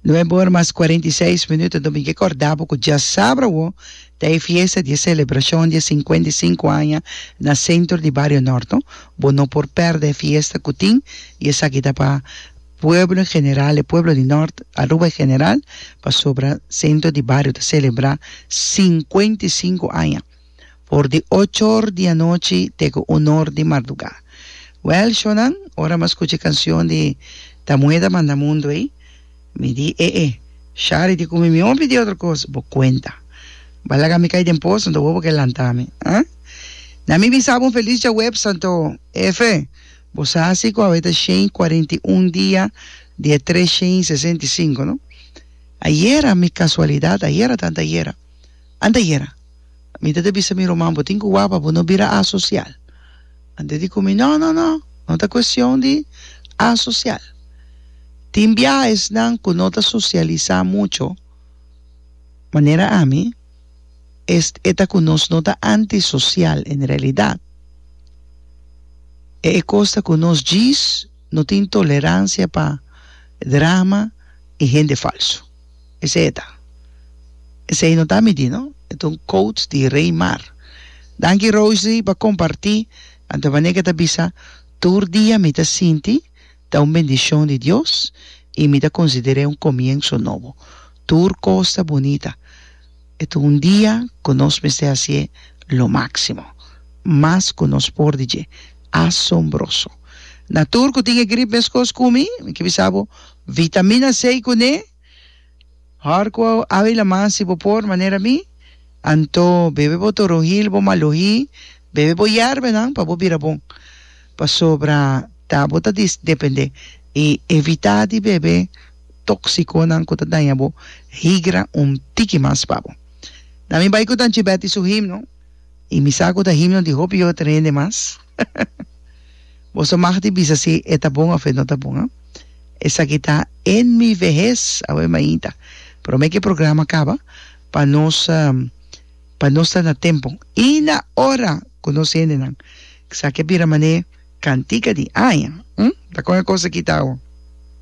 Nuebe ora mas cuarenta i seis minuto domingo e corda bo cu dja sabra awo ta e fiesta di e celebracion di e cincuenta i cinco aña na centro di Bario Norte. Bo no por perde e fiesta cu tin y esaki ta pa pueblo en general, e pueblo di Norte, Aruba en general, pasobra centro di Bario ta celebra cincuenta i cinco aña. for di ocho or di anochi te ku un or di mardugá. Wèl, shonnan, ora mas skucha e kansion di Tamueda Manda Mundu ei, mi di e e, Shari di kumi mi hopi di otro kos, bo kuenta. Bo a laga mi kai den poso, anto bo bo ke lantá mi, a? Na mi bisa bo un felis Djaweps, anto, F, bo sa si ku awe ta shei kuarenta i un dia di e tres shei sesenta i sinku, no? Ayera, mi kasualidat, ayera tanta ayera. Anda yera. Mi ta ta bisa mi ruman, bo tin cu wak pa bo no bira asocial. Anda di cu mi, No, no, no, no ta cuestion di asocial. Tin biaesnan cu no ta socialisa mucho, manera ami, es e ta cu nos no ta antisocial en realidad. E e cos ta cu nos djis no tin tolerancia pa drama y hende falso. Esei e ta. Esei no ta mi di no, e ta un quote di Rey Mar. Danki Rosy pa comparti, anto manera ke ta bisa tur dia mi ta sinti ta un bendicion di Dios y mi ta considere un comienzo nobo. Tur cos ta bunita. E ta un dia ku nos mester hasié lo máksimo mas ku nos por di dje. Asombroso! Na tur ku tin e grip meskos ku mi, mi ke bisa bo, vitamina C kuné, hòr ku awe laman si bo por manera mi, anto bebe bo torojil, bo malojí, bebe bo yèrbenan pa bo bira bon. Pasobra ta bo ta dependé i evitá di bebe. tóksikonan ku ta daña bo higra un tiki mas pa bo. Na mi bai ku Tanchi Betty su himno, i mi sa ku ta himno di hopi yoda tren hende mas. Boso mag di bisa si e ta bon òf e no ta bon, a. Esaki ta En mi vejez, awe mainta. Promé ku e programa kaba, pa nos pa nos ta na tempu i na ora ku nos hendenan. Esaki a bira manera kantika di aña, hm? Ta kon e kos aki ta awa.